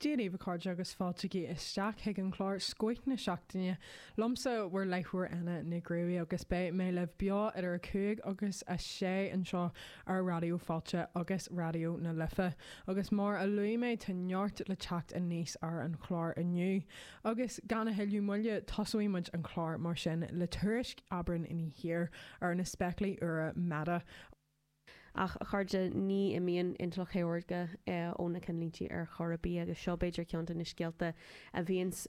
Dia dhaoibh a chairde agus fáilte isteach chuig an chlár Scoth na Seachtaine liomsa, bhur láithreoir Anna Nic Ruairí agus beidh mé libh beo idir 5 agus 6 anseo ar Raidió Fáilte agus Raidió na Life agus mar a luaigh mé tá neart le teacht aníos ar an chlár inniu agus gan a thuilleadh moille tosóidh muid an clár mar sin le tuairisc Aibreán Ní Thiar ar na spéaclaí úra Meta Ach, a chairde, ní imíonn intleacht shaorga ó na ceannlínte ar chor ar bith, agus seo b'fhéidir ceann de na scéalta a bhíonns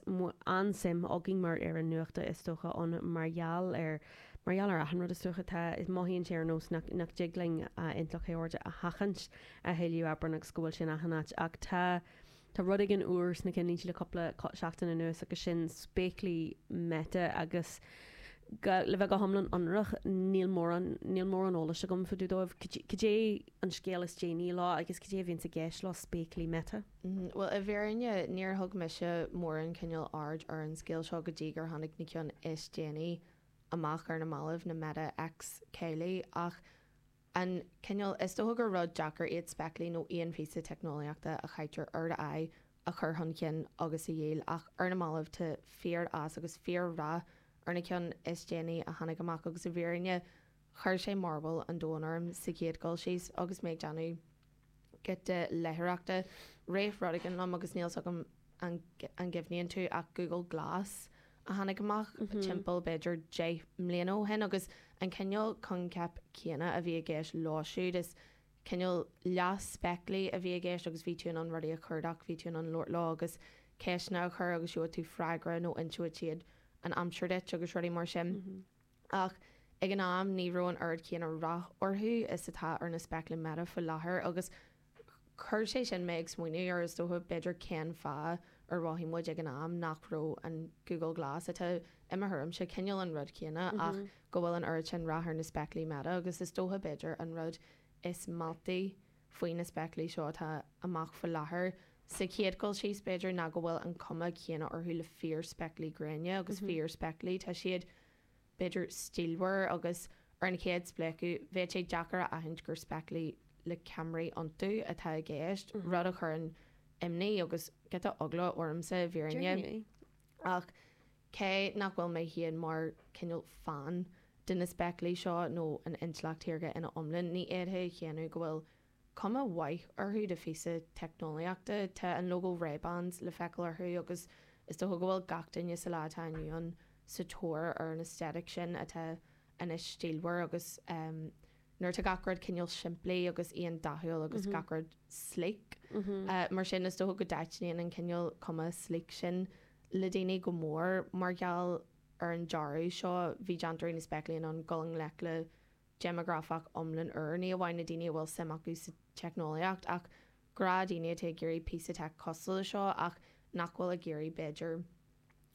an-suim againn mar fhoireann nuachta, is dócha, ann mar gheall ar, mar gheall ar achan rud, is dócha, tá, mothaíonn sé ar nós nach, nach dtig linn intleacht shaorga a sheachaint, a thuilleadh Aibreán agus go bhfuil sé in achan áit, ach tá, Tá rud éigin úr sna cinnlínte le cúpla seachtain anuas agus sin spéaclaí Meta agus, le bheith go hiomlán ionraic, níl mórán, níl mórán eolais agam fá dtaobh dóibh. Cad é an scéal is déanaí leo agus cad é a bhíonns i gceist leo spéaclaí Meta? Bhuel, i bhfírinne, níor thug mise mórán cineál aird ar an scéal seo go dtí gur tháinig na ceann is déanaí amach ar na mallaibh, na Meta X céilí, ach an cineál, is dócha gur rud deacair iad spéaclaí nó aon phíosa teicneolaíochta a chaitear ar d'aghaidh a chur chun cinn agus a dhíol, ach ar na mallaibh tá fíor-fhás agus fíor-rath ar na ceann is déanaí a tháinig amach agus i bhfírinne chuir sé mearbhall an domhain orm sa chéad dul síos agus mé ag déanamh giota leitheoireachta rith rud éigin liom agus níl a fhios agam an gcuimhníonn tú ach Google Glass a tháinig amach timpeall b'fhéidir deich mbliana ó shin agus an cineál coincheap céanna a bhí i gceist leo siúd, is cineál leath spéaclaí a bhí i gceist agus bhí tú in ann rudaí a chuardach, bhí tú in ann labhairt leo agus ceisteanna a chur agus gheobhadh tú freagra nó inseodh siad an aimsir duit agus rudaí mar sin. Ach ag an am ní raibh an oiread céanna rath orthu is atá ar na spéaclaí Meta faoi láthair agus chuir sé sin mé ag smaoineamh ar, is dócha, b'fhéidir cén fáth ar mhothaigh muid ag an am nach raibh an Google Glass, atá, i mo thuairimse, cineál an rud céanna ach go bhfuil an oiread sin rath ar na spéaclaí Meta agus is dócha, b'fhéidir, an rud is mealltaí faoi na spéaclaí seo atá amach faoi láthair, sa chéad dul síos, b'fhéidir, ná go bhfuil an cuma chéanna orthu le fíorspéaclaí gréine agus fíorspéaclaí. Tá siad, b'fhéidir, stílmhar agus, ar an chéad spléachadh, bheadh sé deacair a aithint gur spéaclaí le ceamaraí iontu atá i gceist, rud a chuireann imní agus giota eagla ormsa, i bhfírinne. Ach Cé nach bhfuil mé féin mar chineál fan de na spéaclaí seo nó an intleacht shaorga ina iomlán, ní fhéadfainn a shéanadh go bhfuil cuma mhaith orthu de phíosa teicneolaíochta. Tá an lógó Ray-Bans le feiceáil orthu agus is dócha go bhfuil gach duine sa lá atá inniu ann sa tóir ar an aesthetic sin atá anois stílmhar agus, nuair atá gach rud cineál simplí agus aondathúil agus gach rud sleek. Mar sin, is dócha go dtaitníonn an cineál cuma sleek sin le daoine go mór. Mar gheall ar an dearadh seo, bhí déantóirí na spéaclaí in ann dul i ngleic le déimeagrafach iomlán úr, ní amháin na daoine a bhfuil suim acu sa teicneolaíocht, ach gnáthdhaoine atá ag iarraidh píosa teic cosúil le seo ach nach bhfuil ag iarraidh, b'fhéidir,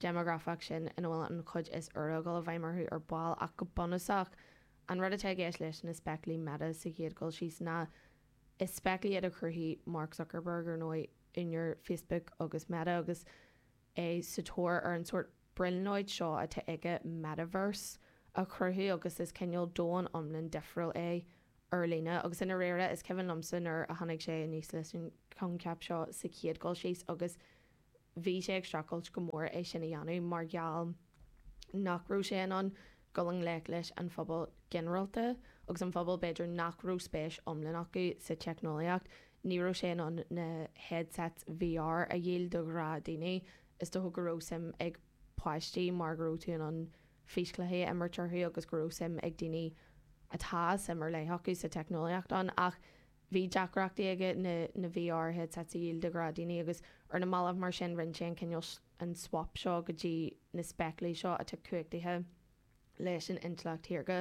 déimeagrafach sin ina bhfuil an chuid is úire ag dul i bhfeidhm orthu ar ball ach go bunúsach an rud atá i gceist leis na spéaclaí Meta sa chéad dul síos ná is spéaclaí iad a chruthaigh Mark Zuckerberg, ar ndóigh, úinéir Facebook agus Meta agus é sa tóir ar an sórt brionglóid seo atá aige, metaverse, a chruthú agus is cineál domhan iomlán difriúil é ar líne agus i ndáiríre is cuimhin liomsa nuair a tháinig sé aníos leis an choincheap seo sa chéad dul síos agus Bhí sé ag streachailt go mór é sin a dhéanamh mar gheall nach raibh sé in ann dul i ngleic leis an phobal ginearálta agus an phobal, b'fhéidir, nach raibh spéis iomlán acu sa teicneolaíocht. Ní raibh sé in ann na headsets VR a dhíol do ghnáthdhaoine. Is dócha go raibh suim ag páistí mar go raibh tú in ann físchluichí a imirt orthu agus go raibh suim ag daoine atá suim ar leith acu sa teicneolaíocht ann ach Bhí deacrachtaí aige na nithe áirithe teic a dhíol do ghnáthdhaoine agus ar na mallaibh mar sin rinne sé an cineál an swap seo go dtí na spéaclaí seo atá cumhachtaithe leis an intleacht shaorga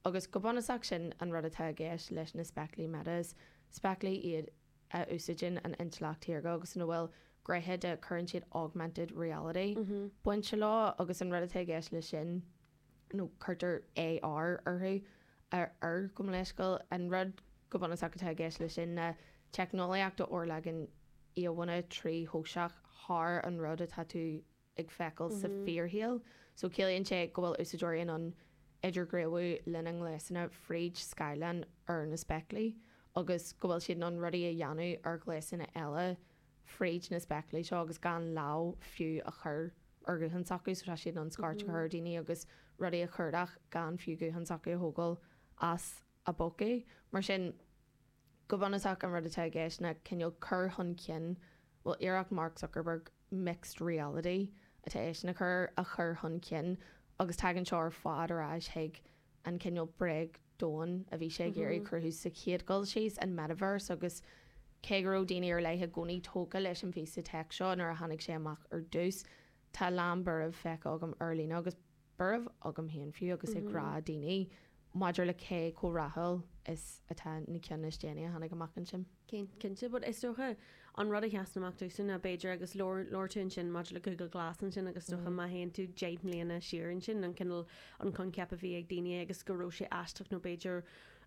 agus go bunúsach sin an rud atá i gceist leis na spéaclaí Meta, is spéaclaí iad a úsáideann an intleacht shaorga agus ina bhfuil gnéithe de, cuireann siad augmented reality bainte leo agus an rud atá i gceist leis sin. nó cuirtear AR orthu, ar gabh mo leithscéal, an rud go bunúsach atá i gceist leis sin ná teicneolaíocht a fhorleagann íomhánna tríthoiseach thar an rud atá tú ag feiceáil sa fíorshaol. So ciallaíonn sé go bhfuil úsáideoirí in ann idirghníomhú lena ngléasanna fríd scáileán ar na spéaclaí agus go bhfuil siad in ann rudaí a dhéanamh ar ghléasanna eile fríd na spéaclaí seo agus gan lámh fiú a chur ar ghuthán s'acu, so tá siad in ann scairt a chur ar dhaoine agus rudaí a chuardach gan fiú guthán s'acu a thógáil as a bpócaí. Mar sin, go bunúsach, an rud atá i gceist ná cineál cur chun cinn, bhuel, iarracht Mark Zuckerberg mixed reality atá eisean ag cur, a chur chun cinn agus tagann seo ar fad ar ais chuig an cineál bréag, domhan a bhí sé ag iarraidh cruthú sa chéad dul síos, an metaverse, agus cé go raibh daoine ar leith i gcónaí tógtha leis an phíosa teic seo nuair a tháinig sé amach ar dtús, tá a lán buaireamh feicthe agam ar líne agus buaireamh agam féin fiú agus ag gnáthdhaoine maidir le cé chomh rathúil is atá na ceann is déanaí a tháinig amach ansin. Cinnte, is dócha an rud a sheasann amach domhsa ná b'fhéidir, agus labhair, labhair tú ansin maidir le Google Glass ansin agus is dócha má théann tú deich mbliana siar ansin, an cineál, an coincheap a bhí ag daoine agus go raibh sé aisteach nó b'fhéidir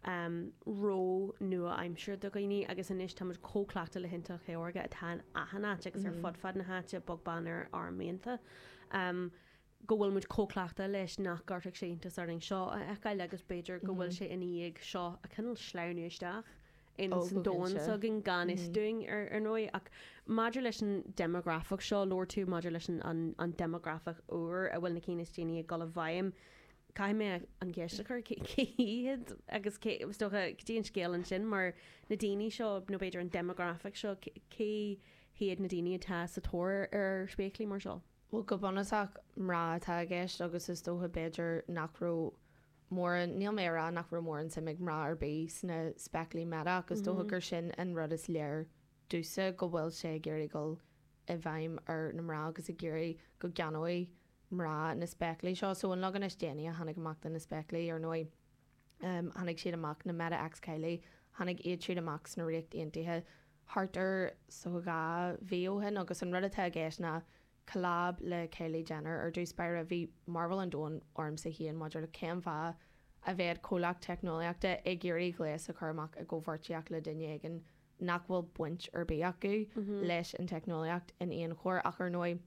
ró-nua-aimseartha do dhaoine agus anois tá muid chomh cleachta le hIntleacht Shaorga atá in achan áit agus ar fud fad na háite, bog beann ar ár mianta. go bhfuil muid chomh cleachta leis nach gcuirfeadh sé iontas orainn seo a fheiceáil agus b'fhéidir go bhfuil sé ina dhiaidh seo ag cineál sleamhnú isteach ins an domhan s'againn gan fhios dúinn ar ndóigh. Ach maidir leis an deimeagrafach seo a labhair tú, maidir leis an deimeagrafach úr a bhfuil na cinn is déanaí ag dul i bhfeidhm, caithfidh mé an cheist a chur, cé hiad agus cé, is dócha, go dtí an scéal ansin mar na daoine seo, nó b'fhéidir an deimeagrafach seo, cé hiad na daoine atá sa tóir ar spéaclaí mar seo? Bhuel, go bunúsach, mná atá i gceist agus is dócha, b'fhéidir, nach raibh mórán, níl mé a' rá nach raibh mórán suim ag mná ar bith sna spéaclaí Meta, is dócha gur sin an rud is léir domhsa, go bhfuil siad ag iarraidh dul i bhfeidhm ar na mná agus ag iarraidh go gceannóidh mná na spéaclaí seo. So, an leagan is déanaí a tháinig amach do na spéaclaí, ar ndóigh. tháinig siad amach, na Meta x Kylie, tháinig iad siúd amach sa Ríocht Aontaithe thart ar dhá mhí ó shin agus an rud atá i gceist ná collab le Kylie Jenner. Ar dtús báire bhí mearbhall an domhain ormsa féin maidir le cén fáth a bheadh comhlacht teicneolaíochta ag iarraidh gléas a chur amach i gcomhpháirtíocht le duine éigin nach bhfuil baint ar bith acu leis an teicneolaíocht in aon chor ach ar ndóigh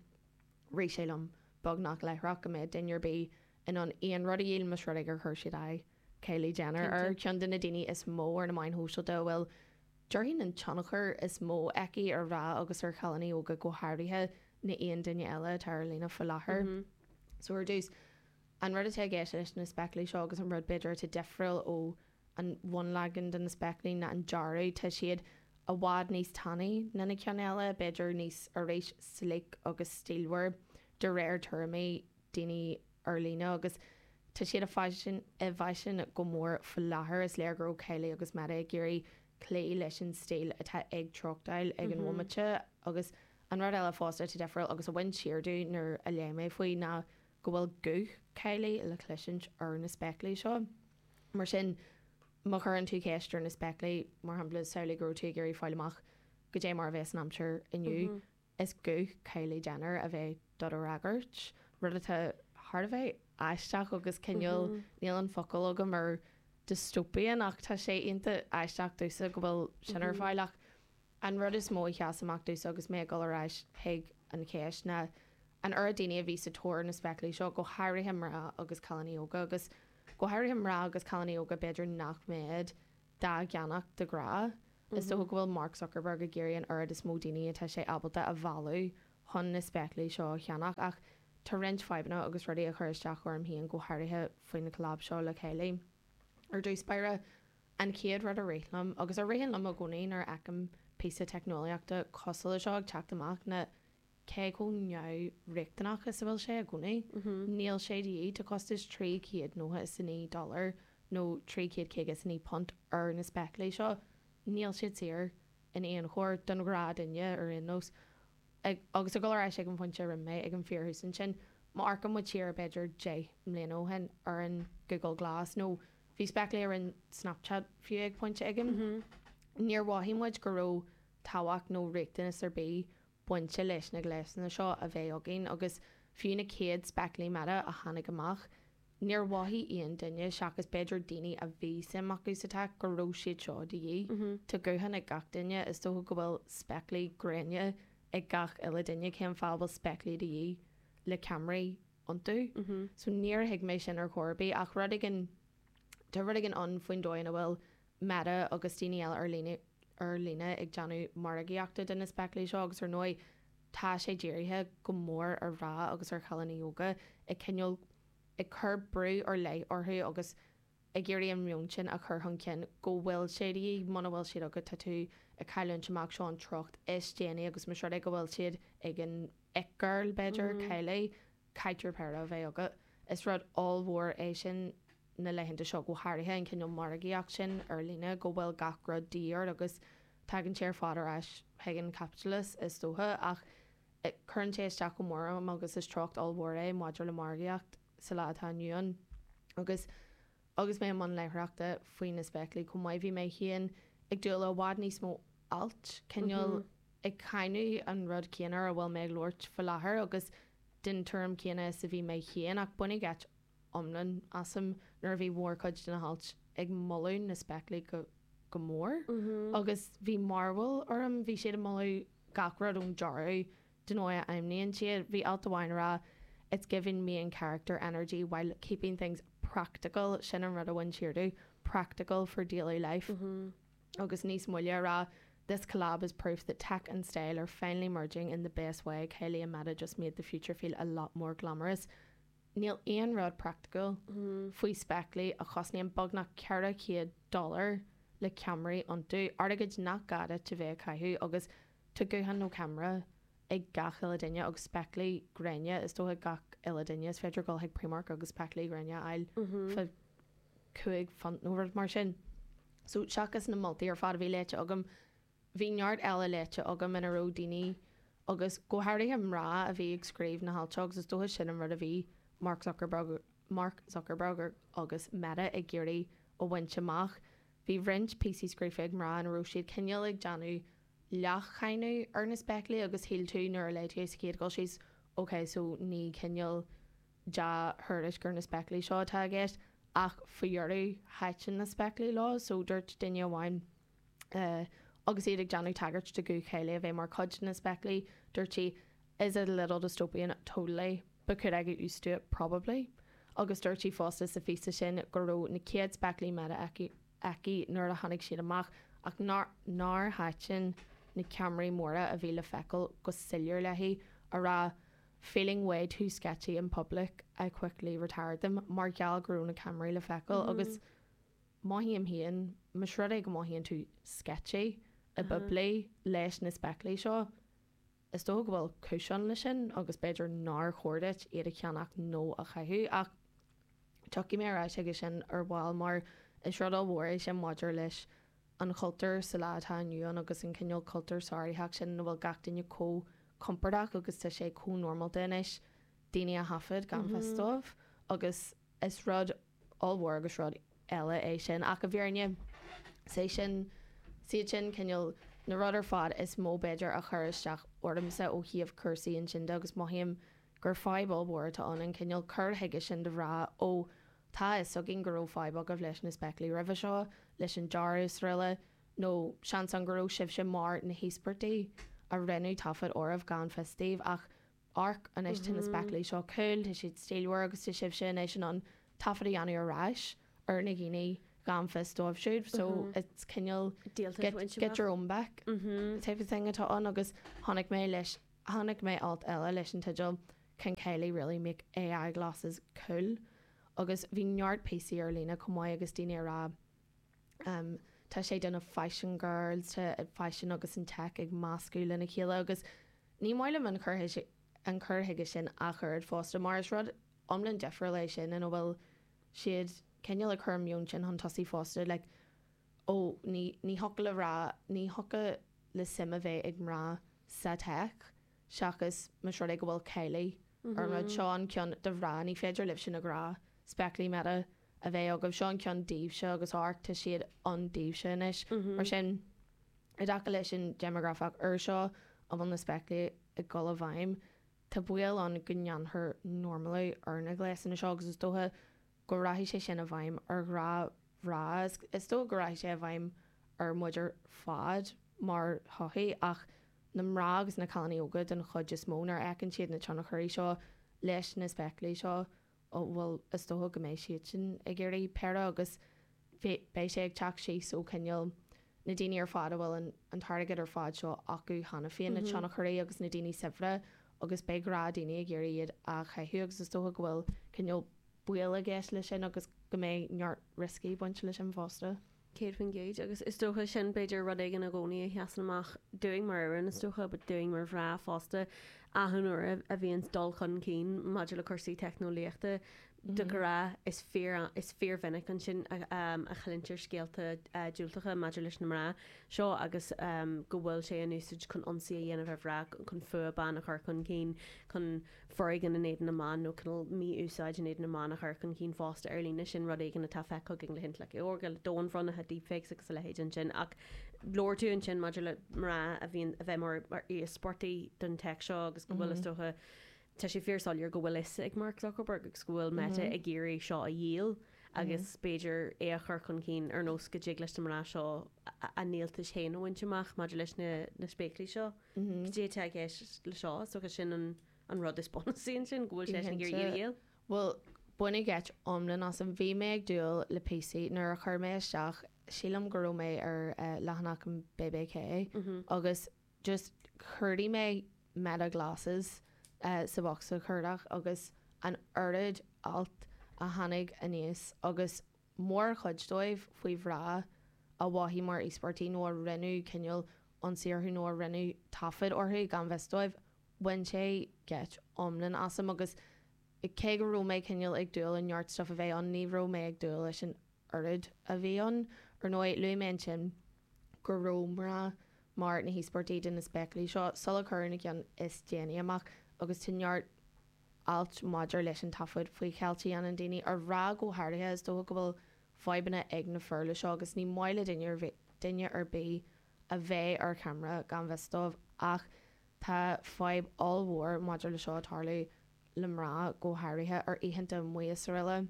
rith sé liom beagnach láithreach go mbeadh duine ar bith in ann aon rud a dhíol, más rud é gur chuir siad aghaidh Kylie Jenner air, ceann de na daoine is mó ar na meáin shóisialta a bhfuil, déarfainn, an tionchar is mó aici ar mhná agus ar chailíní óga go háirithe, ná aon duine eile atá ar líne faoi láthair. So ar dtús, an rud atá i gceist leis na spéaclaí seo, agus an rud, b'fhéidir, atá difriúil ó an bhunleagan de na spéaclaí, ná an dearadh. Tá siad i bhfad níos tanaí ná na cinn eile, b'fhéidir níos, arís, sleek agus stílmhar, de réir tuairimí. daoine ar líne agus tá siad i bhfaisean go mór faoi láthair, is léir go raibh Kylie agus Meta ag iarraidh cloí leis an stíl atá ag treochtáil ag an bhomaite. Agus an rud eile fosta atá difriúil, agus a bhain siar díom nuair a léigh mé faoi, ná go bhfuil guth Kylie le cluinstin ar na spéaclaí seo. Mar sin, má chuireann tú ceist ar na spéaclaí, mar shampla, samhlaigh go raibh tú ag iarraidh fáil amach, Goidé mar a bhéas an aimsir inniu? Is guth Kylie Jenner a bheidh do do fhreagairt, rud atá thar a bheith aisteach agus cineál, níl an focal agam ar dystopian ach tá sé iontach aisteach domhsa go bhfuil sin ar fáil ach an rud is mó a sheas amach domhsa agus mé ag dul ar ais chuig an cheist ná an oiread daoine a bhí sa tóir ar na spéaclaí seo, go háirithe mná agus cailíní óga agus go háirithe mná agus cailíní óga b'fhéidir nach mbeadh. dá gceannach de ghnáth. Is dócha go bhfuil Mark Zuckerberg ag iarraidh an oiread is mó daoine atá sé ábalta a mhealladh chun na spéaclaí seo a cheannach, ach tá roinnt fadhbanna agus rudaí ag cur isteach orm féin go háirithe faoi na collab seo le chéile. Ar dtús báire, an chéad rud a rith liom, agus a ritheann liom i gcónaí nuair a fheicim píosa teicneolaíochta cosúil leis seo ag teacht amach, ná cé chomh neamhriachtanach is a bhfuil sé i gcónaí, níl sé de dhíth, tá costas trí chéad nócha is a naoi dollar, nó trí chéad caoga is a naoi punt, ar na spéaclaí seo. Níl siad saor, in aon chor, don ghnáthdhuine, ar aon nós. Agus ag dul ar ais ag an phointe a rinne mé, ag an fíorthús ansin, má amharcann muid siar, b'fhéidir, deich mbliana ó shin, ar an Google Glass, nó bhí spéaclaí ar an Snapchat, fiú, ag pointe éigin, níor mhothaigh muid go raibh tábhacht nó riachtanas ar bith bainte leis na gléasanna seo a bheith againn agus fiú na chéad spéaclaí Meta a tháinig amach, níor mhothaigh aon duine, seachas b'fhéidir daoine a bhí suim acu sa tech, go raibh siad seo de dhíth. Tá guthán ag gach duine, is dócha go bhfuil spéaclaí gréine ag gach uile duine, cén fáth a bhfuil spéaclaí de dhíth le ceamaraí iontu? So níor thuig mé sin ar chor ar bith ach rud éigin, tá rud éigin ann faoin dóigh ina bhfuil Meta agus daoine eile ar líne ag déanamh margaíochta de na spéaclaí seo agus ar ndóigh tá sé dírithe go mór ar mhná agus ar chailíní óga, ag cineál ag cur brú ar leith orthu agus ag iarraidh an meon sin a chur chun cinn go bhfuil sé de dhíth, muna bhfuil siad agat tá tú ag cailliúint amach, seo an treocht is déanaí agus más rud é go bhfuil siad ag an it girl b'fhéidir, Kylie, caithfidh tú péire a bheith agat. Is rud ollmhór é sin. na laethanta seo go háirithe, an cineál margaíocht sin ar líne go bhfuil gach rud de dhíth orainn agus tagann sé ar fad ar ais chuig an chaipitleachas is dócha, ach cuireann sé isteach go mór orm agus is treocht ollmhór é maidir le margaíocht sa lá atá inniu ann. Agus agus mé i mbun léitheoireachta faoi na spéaclaí chomh maith bhí mé féin ag dúil le i bhfad níos mó alt, cineál ag cáineadh an rud céanna ar a bhfuil mé ag labhairt faoi láthair agus den tuairim chéanna is a bhí mé féin ach baineadh geit iomlán asam nuair a bhí mórchuid de na hailt ag moladh na spéaclaí go mór agus bhí mearbhall orm, bhí siad ag moladh gach rud ón dearadh don dóigh a fheidhmníonn siad, bhí alt amháin a rá It's giving main character energy while keeping things practical, sin an rud a bhain siar díom, practical for daily life. Agus níos moille a rá This collab is proof that tech and style are finally merging in the best way, Kylie and Meta just made the future feel a lot more glamorous. Níl aon rud praiticiúil faoi spéaclaí a chosnaíonn beagnach 400 dollar le ceamaraí iontu, ar dóigh nach gá duit a bheith á gcaitheamh, agus tá guthán nó ceamara ag gach uile duine, agus spéaclaí gréine is dócha ag gach uile duine. Is féidir dul chuig Primark agus spéaclaí gréine a fháil fá cúig phunt nó rud mar sin. So, seachas na moltaí ar fad a bhí léite agam, Bhí neart eile léite agam ina raibh daoine, agus go háirithe mná, a bhí ag scríobh na hailt seo, agus is dócha sin an rud a bhí Mark Zuckerberg agus Meta ag iarraidh a bhaint amach. Bhí roinnt píosaí scríofa ag mná ina raibh siad cineál ag déanamh leathcháineadh ar na spéaclaí, agus shíl tú nuair a léigh tú é sa chéad cur síos, ok, so ní cineál dea-thuairisc ar na spéaclaí seo atá i gceist, ach faoi dheireadh thaitin na spéaclaí leo, so dúirt duine amháin. Agus iad ag déanamh tagairt de ghuth Kylie a bheith mar chuid de na spéaclaí, dúirt sí, Is it a little dystopian? Totally. But could I get used to it? Probably. Agus dúirt sí fosta sa phíosa sin go raibh na chéad spéaclaí Meta aici nuair a tháinig siad amach ach nár thaitin na ceamaraí móra a bhí le feiceáil go soiléir léi, ag rá, Feeling way too sketchy in public, I quickly retired them, mar gheall go raibh na ceamaraí le feiceáil agus. mothaím féin, más rud é go mothaíonn tú sketchy go poiblí leis na spéaclaí seo, is dócha go bhfuil cúis ann leis sin agus b'fhéidir nár chóir duit iad a cheannach nó a chaitheamh ach tiocfaidh mé ar ais chuige sin ar ball mar is rud ollmhór é sin maidir leis an chultúr sa lá atá inniu ann agus an cineál cultúr sáraitheach sin ina bhfuil gach duine chomh compordach agus tá sé chomh normálta anois daoine a thaifeadadh gan fios dóibh agus is rud ollmhór agus rud eile é sin ach i bhfírinne 's é sin 's iad sin cineál na rudaí ar fad is mó b'fhéidir a chuir isteach ormsa ó thaobh cúrsaí inscne de agus mothaím gur fadhb ollmhór atá ann, an cineál cur chuige sin de a rá ó tá a fhios againn go raibh fadhb agaibh leis na spéaclaí roimhe seo, leis an dearadh agus araile nó seans ann go raibh sibhse mar na híospartaigh a rinneadh taifead oraibh gan fios daoibh ach Amharc anois tá na spéaclaí seo cúil, tá siad stílmhar agus tá sibhse anois in ann taifead a dhéanamh ar ais ar na daoine gan fios dóibh siúd, so it's cineál get your own back type of thing atá ann agus chonaic mé le, chonaic mé alt eile leis an teideal Can Kylie really make AI glasses cool? agus bhí neart píosaí ar líne chomh maith agus daoine a' rá, Tá sé do na Fashion Girls, tá an faisean agus an teic ag meascadh lena chéile agus ní maith liom an cur an cur chuige sin ach oiread fosta mar is rud iomlán difriúil é sin ina bhfuil siad cineál ag cur an meon sin chun tosaigh fosta like ó ní ní thiocfadh le mná ní thiocfadh le suim a bheith ag mná sa teic seachas más rud é go bhfuil Kylie ar an rud seo an ceann do mhná ní féidir libhse na gnáthspéaclaí Meta a bheith agaibh, seo an ceann daoibhse agus amharc, tá siad ann daoibhse anois. Mar sin, i dtaca leis an déimeagrafach úr seo a bhfuil na spéaclaí ag dul i bhfeidhm, tá baol ann go ndéanfar normalú ar na gléasanna seo agus is dócha go rachaidh sé sin i bhfeidhm ar ghnáthmhná, is dócha go rachaidh sé i bhfeidhm ar muid ar fad mar shochaí ach na mná agus na cailíní óga den chuid is mó nuair a fheiceann siad na tionchairí seo leis na spéaclaí seo. Ó, bhuel, is dócha go mbeidh siadsan ag iarraidh péire agus beidh sé ag teacht síos ó, cineál, na daoine ar fad a bhfuil an t-airgead ar fad seo acu cheana féin, na tionchairí agus na daoine saibhre agus beidh gnáthdhaoine ag iarraidh iad a chaitheamh agus is dócha go bhfuil cineál baol i gceist leis sin agus go mbeidh neart rioscaí ag baint leis sin fosta. céad faoin gcéad, agus is dócha sin, b'fhéidir, rud éigin i gcónaí a sheasann amach dúinn mar fhoireann, is dócha, but dúinn mar mhná fosta, achan uair a bhíonns dul chun cinn maidir le cúrsaí teicneolaíochta, de ghnáth, is fíor, is fíormhinic ansin a chluintear scéalta diúltacha maidir leis na mná seo agus go bhfuil sé in úsaid chun ionsaí a dhéanamh ar mhná, chun fuath ban a chur chun cinn, chun. foréigean in éadan na mban nó cineál mí-úsáid in éadan na mban a chur chun cinn fosta ar líne, sin rud éigin atá feicthe againn le hintleacht shaorga, le domhainbhrionnuithe, deepfakes agus a leithéid ansin. Ach labhair tú ansin maidir le mná a bhíonn, a bheith mar íospartaigh den tech seo agus go bhfuil, is dócha, tá sé fíor soiléir go bhfuil fhios ag Mark Zuckerberg agus go bhfuil Meta ag iarraidh seo a dhíol agus b'fhéidir é a chur chun cinn ar nós go dtig leis na mná seo a ndíoltais féin a bhaint amach maidir leis na spéaclaí seo. Cad é atá i gceist le seo, is dócha sin an rud is bunúsaí ansin, go bhfuil sé ag iarraidh í a dhíol. Bhuel, baineadh geit iomlán asam. Bhí mé ag dúil le píosaí nuair a chuir mé isteach, sílim go raibh mé ar leathanach an BBC, agus just chuardaigh mé 'Meta Glasses' sa bhocsa cuardach agus an oiread alt a tháinig aníos agus mórchuid dóibh faoi mhná a mhothaigh mar íospartaigh nó a rinneadh cineál ionsaí orthu nó a rinneadh taifead orthu gan fhios dóibh, bhain sé geit iomlán asam agus cé go raibh mé cineál ag dúil le neart stuif a bheith ann, ní raibh mé ag dúil leis an oiread a bhí ann. Ar ndóigh, luaigh mé ansin go raibh mná mar na híospartaigh de na spéaclaí seo sula cuireadh na cinn is déanaí amach agus tá neart ailt maidir leis an taifead faoi cheilt a dhéanann daoine ar mhná go háirithe, is dócha go bhfuil fadhbanna ag na fir le seo agus ní maith le duine ar bith duine ar bith a bheith ar camera gan fhios dóibh ach tá fadhb ollmhór maidir le seo ag tarlú le mná go háirithe ar oícheanta amuigh sa Ríocht.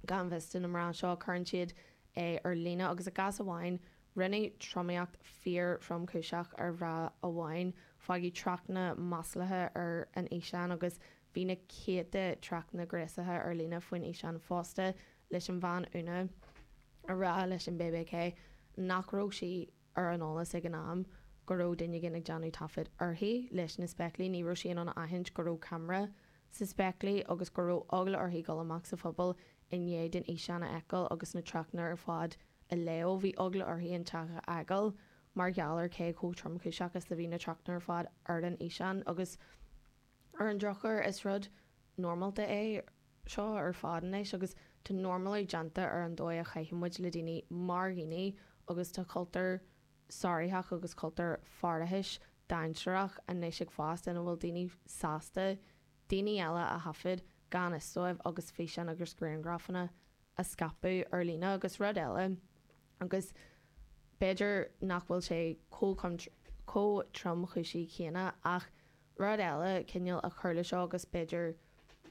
Gan fhios do na mná seo, cuireann siad é ar líne agus i gcás amháin rinneadh tromaíocht fíor-thromchúiseach ar bhean amháin, fágadh tráchtanna maslacha ar an fhíseán agus bhí na céadta tráchtanna gnéasacha ar líne faoin fhíseán fosta, leis an bhean óg ag rá leis an BBC nach raibh sí ar an eolas ag an am go raibh duine éigin ag déanamh taifead uirthi leis na spéaclaí, ní raibh sí in ann a aithint go raibh ceamara sna spéaclaí agus go raibh eagla uirthi dul amach sa phobal i ndiaidh di an físeán a fheiceáil agus na tráchtanna ar fad a léamh. Bhí eagla uirthi an teach a fhágáil mar gheall ar cé chomh tromchúiseach is a bhí na tráchtanna ar fad ar an fhíseán agus Ar an drochuair, is rud normálta é seo ar fad anois agus tá normalú déanta ar an dóigh a chaitheann muid le daoine mar dhaoine agus tá cultúr sáraitheach agus cultúr faireachais dainséarach anois ag fás ina bhfuil daoine sásta daoine eile a thaifead gan fhios dóibh agus físeáin agus grianghrafanna a scaipeadh ar líne agus rud eile agus b'fhéidir nach bhfuil sé chomh tromchúiseach céanna ach Rud eile cineál a chuir le seo, agus b'fhéidir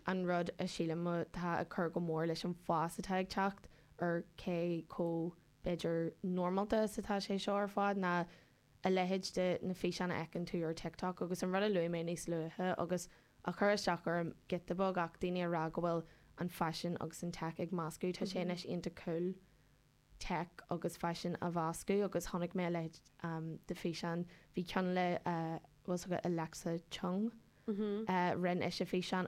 an rud a shílim atá ag cur go mór leis an fhás atá ag teacht ar cé chomh, b'fhéidir, normálta is atá sé seo ar fad, ná a leithéid de na físeáin a fheiceann tú ar TikTok agus an rud a luaigh mé níos luaithe agus a chuir isteach orm giota beag ach daoine ag rá go bhfuil an faisean agus an tech ag meascadh, tá sé anois iontach cool. tech agus faisean a mheascadh agus chonaic mé a leithéid de fhíseán, bhí ceann le, bhfuil a fhios agat, Alexa Chung, rinne ise físeán.